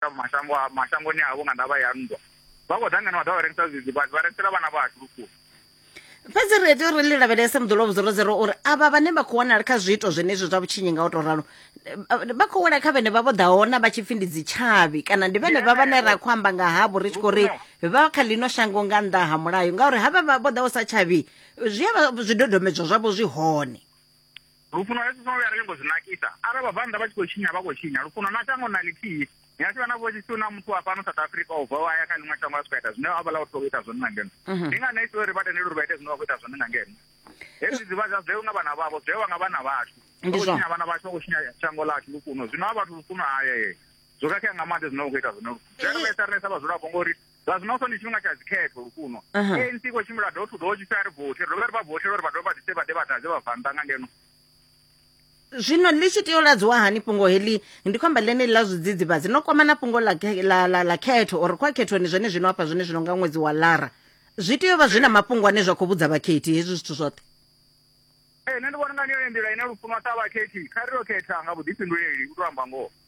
mashango a mashangoni avho nga ndavha ya nndwa vha khou ḓa ngeno vha ḓa vha rengisa zwidzidzivhadzi vha rengisela vhana vha hashu vhukuma fhedzi ri tea uri ḽi lavhelese muḓolo vhudzorozero uri avha vhane vha khou wanala kha zwiito zwenezwi zwa vhutshinyi nga u tou ralo eh, vha khou wela kha vhene vha vho ḓa hona vha tshi pfhi ndi dzitshavhi kana ndi vhene vha vhane ra khou amba nga havho ri tshi khou ri vha kha ḽino shango nga nnḓa ha mulayo ngauri havha vha vho ḓa u sa tshavhi zwi avha zwidodombedzwa zwavho zwi hone Lufuno lwa Yesu songo vhuya ra nyongo zwi nakisa. Arali vhabvannḓa vha tshi khou tshinya vha khou tshinya, lufuno na shango na ḽithihi. Ni a tshi vha na vhushisi na muthu wa fhano South Africa o bvaho a ya kha ḽiṅwe shango a swika ita zwine havhaḽa vhathu vha khou ita zwone nga ngeno. Ndi ngani a tshi tea uri vha tendele uri vha ite zwine vha khou ita zwone nga ngeno? Hezwi zwi vha zwa zwewe nga vhana vhavho, zwewa nga vhana vhashu. Vha Ndi khou zwone. tshinya vhana vhashu, vha khou tshinya shango ḽashu lufuno. Zwino ha vhathu lufuno hayee. Zwo khakhea nga maanḓa zwine vha khou ita zwone. Zwi a ri vhaisa riṋe sa vhadzulapo ngori zwa zwino so ndi tshifhinga tsha dzikhetho lukuno anc khou tshimbila do thu do tshi sa ri vothi ri dovhe ri vha vothela uri vha dovhe vha ḓise vha ḓe vha ḓadze vha vannḓa nga ngeno zwino ḽi tshi tea u ladziwa hani fhungo heḽi ndi khomba ḽeneḽi ḽa zwidzidzivhadzi no kwama na fhungo ḽa ḽa khetho or kwa khethoni zwone zwino hafha zwone zwino nga ṅwedzi wa lara zwi tea u vha zwi na mafhungo ane zwa khou vhudza vhakhethi hezwi zwithu zwoṱhe ee nṋe ndi vhona nga ndi yone nḓila ine lufunwa sa vhakhethi kha ri yo khetha nga vhuḓifhinduleli u to amba ngoho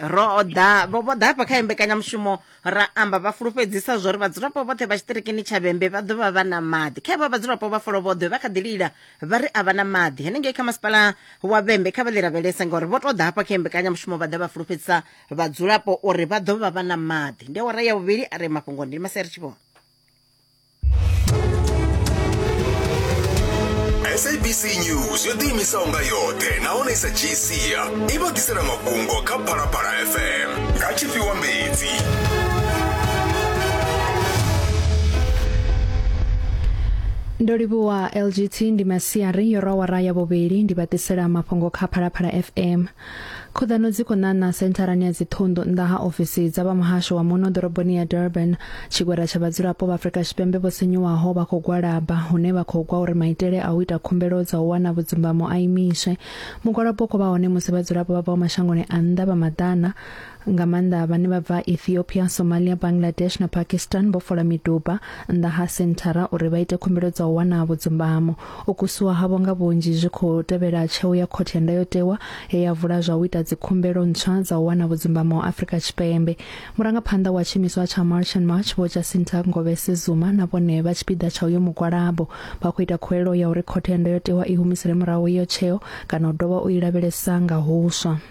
ro ḓa vho ḓa hafha kha mbekanyamushumo ra amba vha fulufhedzisa zwo ri vhadzulapo vhoṱhe vha tshitirikini tsha vhembe vha ḓovha vha na maḓi kha vha vhadzulapo vha folo vhoḓhe vha kha ḓi lila vha ri a vha na maḓi henengei kha masipala wa vhembe kha vha ḽi lavhelese ngauri vho to ḓa hafha kha mbekanyamushumo vha ḓa vha fulufhedzisa vhadzulapo uri vha ḓovha vha na maḓi ndi awara ya vhuvhili a re mafhungo ndi maseri tshivhona sabc news yo ḓiimisaho nga yoṱhe nahone i sa dzhii sia i vha ḓisela mafhungo kha phalaphala fm nga tshifhiwa mbedzi ndo livhuwa lgt ndi masiari yo rawara ya vhuvhili ndi vhatisela mafhungo kha phalaphala fm Khuḓano dzi khou ṋaṋa sentharani ya dziṱhunḓu nnḓa ha ofisi dza vha muhasho wa muno ḓoroboni ya Durban. Tshigwada tsha vhadzulapo vha Afrika Tshipembe vho sinyuwaho vha khou gwalaba hune vha khou gwa uri maitele a u ita khumbelo dza u wana vhudzumbamo a imiswe. Mugwalabo u khou vha hone musi vhadzulapo vha bvaho mashangoni a nnḓa vha maḓana nga maanḓa vhane vha bva ethiopia somalia bangladesh na pakistan vho fola miduba nnḓa ha senthara uri vha ite khumbelo dza u wana vhudzumbamo u kusiwa havho nga vhunzhi zwi khou tevhela tsheo ya khothe ya ndayotewa he ya vula zwa u ita dzikhumbelo ntswa dza u wana vhudzumbamo wa afrika tshipembe murangaphanḓa wa tshiimiswa tsha march and march vho jacinta ngovese zuma na vhone vha tshipiḓa tsha uyo mugwalabo vha khou ita khuwelelo ya uri khothe ya ndayotewa i humisele murahu iyo tsheo kana u dovha u i lavhelesa nga huswa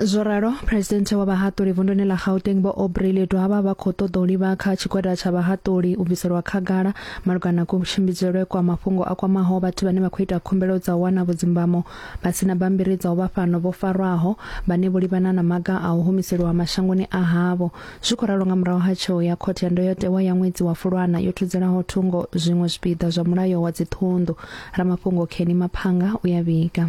zwo ralo presidente wa vhahaṱuli vunduni ḽa gauteng vho aubrey ledwaba vha khou ṱoḓa u livha kha tshigwada tsha vhahaṱuli u bviselwa khagala malugana na kutshimbidzelwe kwa mafhungo a kwamaho vhathu vhane vha khou ita khumbelo dza u wana vhudzimbamo vha si na bammbiri dza u vha fhano vho farwaho vhane vho livhana na maga a u humiseliwa mashangoni a havho zwi khou ralo nga murahu ha tsheo ya khothe ya ndoyotewa ya ṅwedzi wa fulwana yo thudzelaho thungo zwiṅwe zwipiḓa zwa mulayo wa dziṱhunḓu ramafhungo kheni maphanga u ya vhiga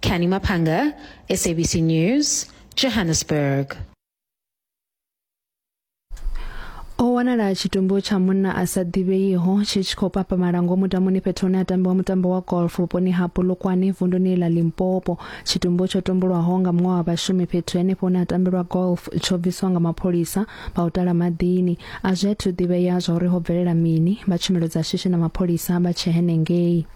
Canny Maphanga, SABC News, Johannesburg. o wanala tshitumbu tsha munna a sa ḓivheiho tshi tshi khou papamala ngomu damuni fhethu hune ha tambiwa mutambo wa golf vhuponi ha polokwane vunduni ḽa limpopo tshitumbu tsho tumbulwaho nga muṅwe wa vhashumi fhethu henefho hune ha tambelwa golf tsho bviswa nga mapholisa vha u tala maḓini a zwi athu ḓivhea zwa uri ho bvelela mini vha tshumelo dza shishi na mapholisa vha tshe henengei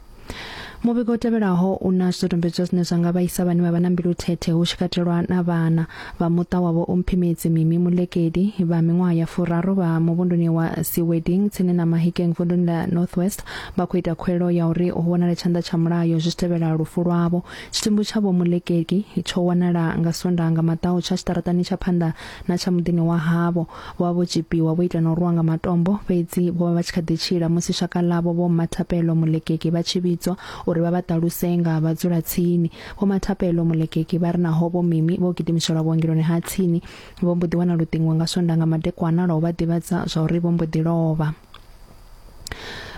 muvhigo u tevhelaho u na zwidodombedzwa zwine zwa nga vhaisa vhane vha vha na mbilu thethe hu tshi katelwa na vhana vha muṱa wavho u mphimedzi mimi mulekedi vha miṅwaha ya furaru vha muvhunduni wa siweding tsini na mahikeng vunduni la northwest vha khou ita khuelo ya uri hu vhonale tshanḓa tsha mulayo zwi tshi tevhela lufu lwavho tshitumbu tsha vho mulekedi tsho wanala nga sondaha nga maḓau tsha tshiṱaratani tsha phanḓa na tsha muḓini wa havho Vho vha vho tzhipiwa, vho itwa na u rwiwa nga matombo, fhedzi vho vha vha tshi kha ḓi tshila musi shaka ḽavho Vho Mmathapelo Molekeki vha tshi vhidzwa uri vha vha ṱaluse nga ha vhadzulatsini. Vho Mmathapelo Molekeki vha ri naho Vho Mimi vho gidimiselwa vhuongeloni ha tsini, vho mbo ḓi wana luṱingo nga Swondaha nga madekwana lwa u vha ḓivhadza zwa uri vho mbo ḓi lovha.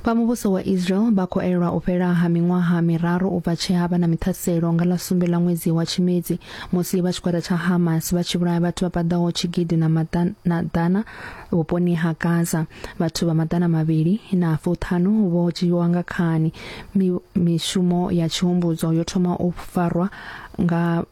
vha muvhuso wa israel vha khou elelwa u fhela ha miṅwaha miraru u bva tshe ha vha na miṱhaselo nga ḽa sumbe ḽa ṅwedzi wa tshimedzi musi vha tshigwada tsha hamas vha tshi vhulaya vhathu vha paḓaho tshigidi na maḓana vhuponi ha gaza vhathu vha maḓana mavhili na fuṱhanu vho dzhiiwa nga khani mishumo ya tshihumbudzo yo thoma u farwa nga